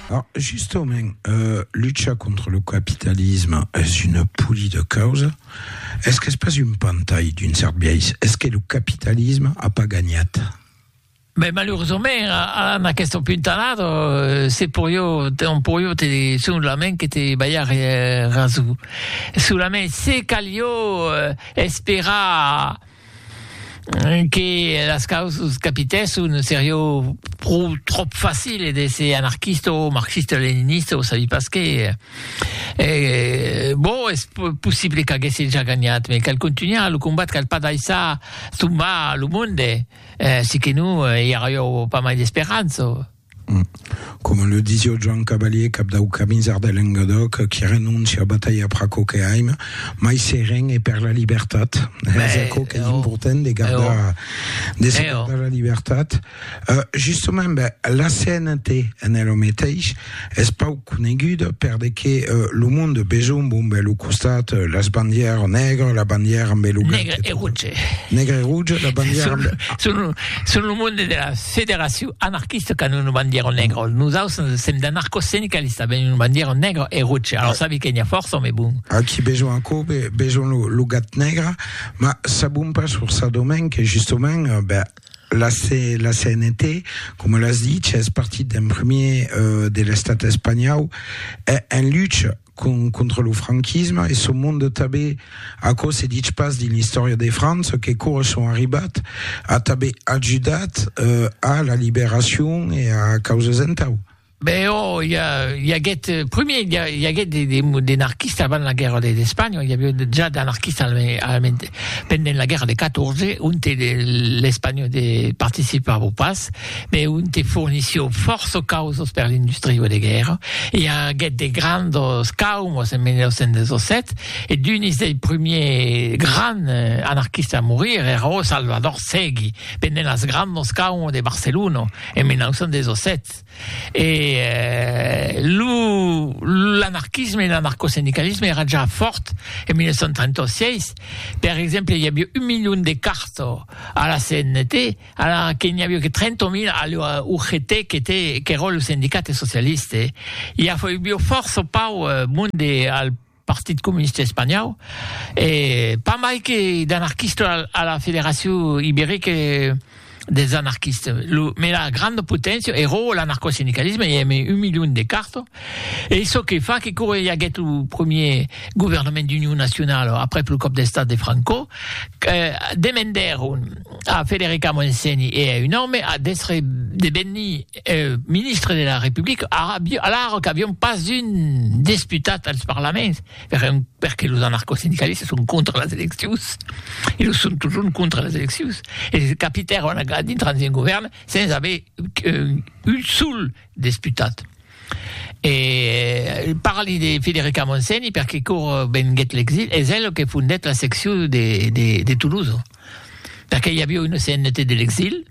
Alors, justement, euh, lucha contra lo capitalisme es una poli de causa. Es qu'es pas un pantai d'un cert biais? Es que lo capitalisme a pas gagnat? Ben, maluresament, a, en aquesta puntalada, eh, se poió, on poió te, solament que te ballar eh, raso. Solament se calió eh, esperar... que las causas capitèsson serió pro tròp facile d'èsser anarquista o marxista-leninista o sabi pas qué e bon es possible qu'aguèsse ja ganhat me cal contunhar lo combat cal pas daissar tombar lo monde si que non i arrió pas mai d'esperança. Coma le disio Joan Cavalier, cap dau Camisard de Lengadòc, qui renonci a batalhar per aquò que aim, mai seren e per la libertat. Es aquò qu'es important de gardar, de se gardar la libertat. Justament, la CNT en ela meteis es pauc. coneguda per de que lo monde besonh bon be lo costat las bandièr nègre la bandièr amb be lo nègre e rouge nègre e rouge la bandièr amb son son lo monde de la federacion anarquista qu'an una bandièr nègre nos aus sem d'anarcos sindicalista ben una bandièr nègre e rouge alors sabi que n'ia fòrça me bon aquí besonh aquò be besonh lo gat nègre ma sabon pas sur sa domaine que justement be la, C, la CNT, coma l'as dit, es partit d'un premier uh, de l'estat espanhau en lucha con, contra lo franquisme e son monde tabé aquò se ditz pas dins l'istòria de França que cora son arribat a tabé ajudat uh, a la liberacion e a causas entau Ben oh, i, a, i aguèt, eh, primier, i, a, i aguèt de, de, de narquistes avant la guerra d'Espanha, i aviá ja d'anarquistes alament, pendent la guerra de 14, on te l'Espanha de participava pas, me on te fornissió força causos per l'industria de guerra, i aguèt de grandos caumos en 1917, e d'unis dei primiers grands eh, anarquistes a morir era Salvador Segui, pendent las grandos caumos de Barcelona en 1917. Tat e lo l'anarquisme e l'anarcosindicalisme èra ja fòrt en 1936. Per exemple, i aviá un milion de carto a la CNT, ara que n'i aviá que 30.000 a la UGT, qu'était qu'èra lo sindicat socialiste. I aviá fòrça pauc monde al Partit Comunista Espanhau, e pas mai que d'anarquista a la Federacion Iberica dels Anarquistes, lo mela granda poténcia e ròu l'anarcosindicalisme, i ème un milion de carta, e çò que fa que quora i aguèt lo premier governament d'union nacionala aprèp lo còp d'estat de Franco, demendèron a Federica Montseny e a un òme d'èstre de venir ministre de la Republica, alara qu'avián pas un desputat als parlaments, perque los anarcosindicalistas son contra las eleccions, e lo son totjorn contra las eleccions, e se capitèron a dintrar dins un govèrn sens aver un sol desputat. E parli de Federica Montseny perque quò venguèt l'exil, es ela que fondèt la seccion de Tolosa, perque i aviá una CNT de l'exil,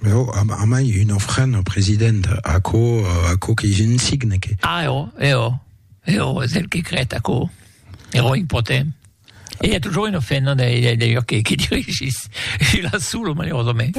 Mais oh, a, a mai un ofrena, president, aquò, aquò que j'en signe que... Ah, oh, eh oh, eh oh, és el que crèt aquò, ero impotent. E i a toujours un ofrena, d'ailleurs, que, que dirigís, e la solo, malerosament.